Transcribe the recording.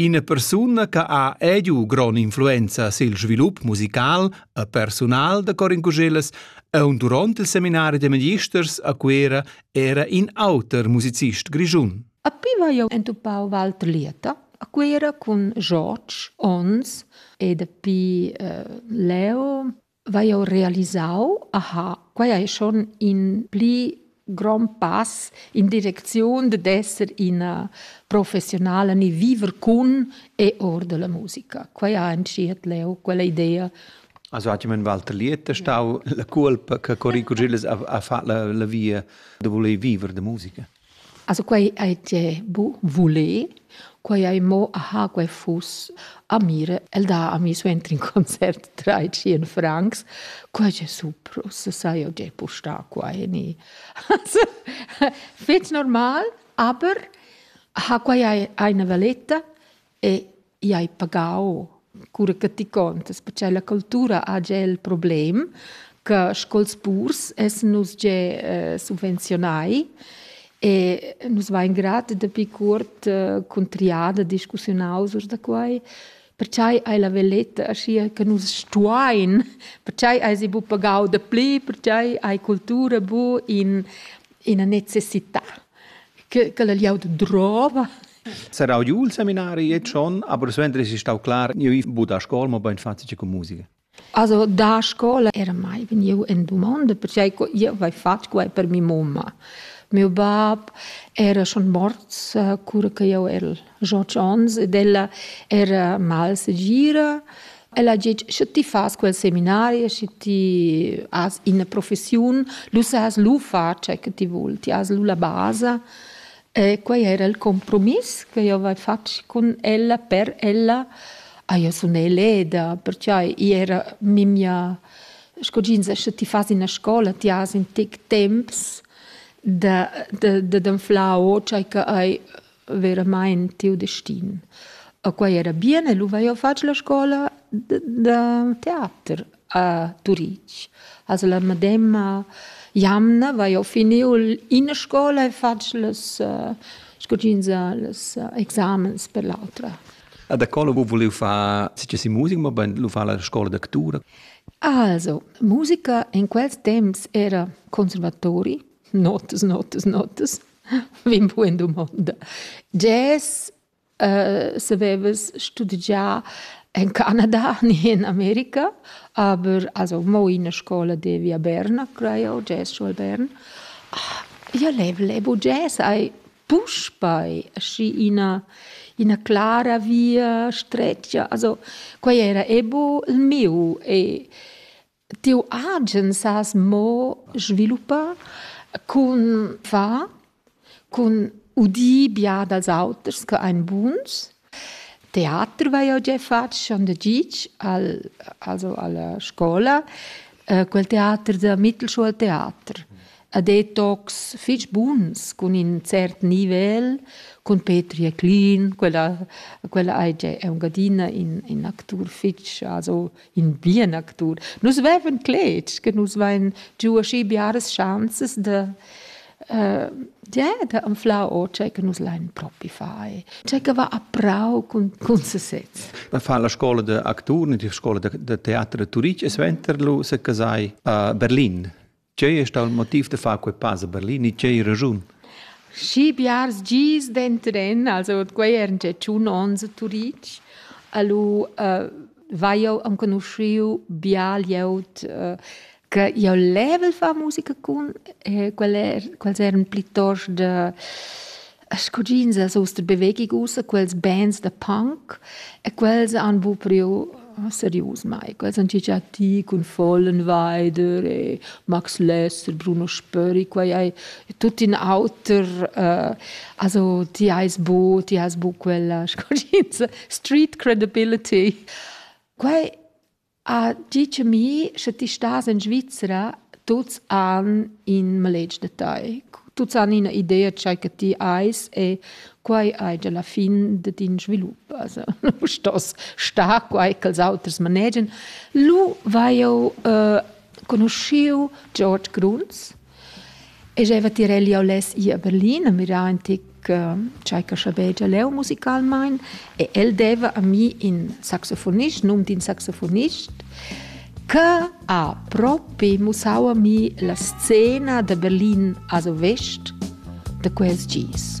Ina persuna che ha ediu grond'influenza sil svilup musical e persunal da Corin Cuschellas aunc duront il seminari da magisters a Cuera era in auter musicist grischun. A pi vai jeu entupau Walter Lieta a Cuera cun George Ons e dapi eh, Leo vai jau realisau, aha, quai è schon in pli grond pass in direcziun d'esser ina professionala ni viver cun e or della musica. Quai ha entschiet leu quella idea. Also hat jemand Walter Liet stau la culpa che Corico Gilles ha, ha fatto la, la via da voler vivere da musica. Also quai ei tie bu vuler, quai ei mo aha, quei fuss a mir. El dà a mi suenter in concert trai tschien francs. Quai è super, ussa sai jau gea pustar qua ni. Also, fetg normal, aber aha, quai ei, ei ina valetta. E i hai pagau. Cura che ti contas, perche la cultura ha gia il problem che sco'ls purs essan nus gia eh, subvenzionai e nus vain grat dapi cuort eh, cun triada discussiunaus urs da quai. Perciai hai la veletta aschia che nus stuain, perciai hai si bu pagau da pli, perciai hai cultura bu in, ina necessità. Che, che la liaud drova Serrau giu il seminari e schon, aber suenter es stau clar, io ich bu da scola, ma bein facile con musica. Also da scola era mai vegniu en domanda perché io avevo fatto quai per mia mamma. Mio bab era schon morts eh, cura che io ero 18 anni ed ella era mal segira. Ella ha detto, se ti fas quel seminario, se ti has una professione, lu has lu far ciò che ti vuoi, ti has lu la base. E quei era il compromiss che jeu haveva fatg cun ella per ella. Ah, jeu sun eleda, pertgei i era memia, sco tg'ins escha, ti fas ina scola, ti has in tec temps da da d'anflar o tgei che ei veramain tiu destin. E quei era bien e lu vai jeu fatg la scola da teater. a Turitg. Also la medemma jamna vai ho finiu ina scola e fatg las scodinza las examens per l'autra. A da co vo vuliu far si si musica, ma lu fa la scola d'actura. Also, musica in quels temps era conservatori, notas, notas, notas, vin bu in dumonda. Jazz savevas studegià en Canada ni en America, aber also mo ina scola devi a Berna, creo, jazz scuol Bern. Io lev, lev u jazz hai puspei aschi ina ina clara via stretga. Also quei era ebo il miu e Tiu agen sas mo sviluppar cun far, cun udir bia dals auters che ein buns. Teater vai jeu gia fatg schon da gitg al, also alla scola, quel teater da Mittelschuhltheater. E detox fich buns cun in cert nivel, cun Petri e Clean, quella, quella ei gia Engiadina in, in actur fich, also in bien actur. Nus vevan cletg che nus vein giu aschi biaras chanzas de Uh, ja, da anflau o tgei che nus lein propi fai. Tgei che va a prau cun, cun sesez. Ma fa la scola de actur, la scola de, de teater de Turic, e sventer lu se casai a Berlin. Tgei è stau il motiv da far quei pass a Berlin e tgei raschun? Schi biars gis dentren, also quei eran gia tschun onns a Turitg, allo uh, vai jau enconuschiu bia glieud uh, che io level fa musica cun, eh, quel er, quels eran plitost de A scuggins as host bewegi ussa quels bands da punk e quels han bu priu serius mai. Quels han già ti cun Fallenweider e Max Lester, Bruno Spöri, quei ei tut in auter. Uh, also ti eis bu, ti has bu quella scuggins street credibility. Quei A tgi cha mi, sche ti stas in Svizra, tuts han in maletg da tai. Tuts han ina idea tgei che ti eis e quai ei gia la fin da tin svilup. Also, lu stos star quai ch'els auters manegian. Lu vai jeu uh, conuschiu George Gruns. E jeva tirel jau less ir a Berlin a mirar in tic uh, tgei che schabegia leu musicalmein e el deva a mi in saxofonist, num d'in saxofonist, che ha propi mussau a mi la scena da Berlin a Vest de quels gis.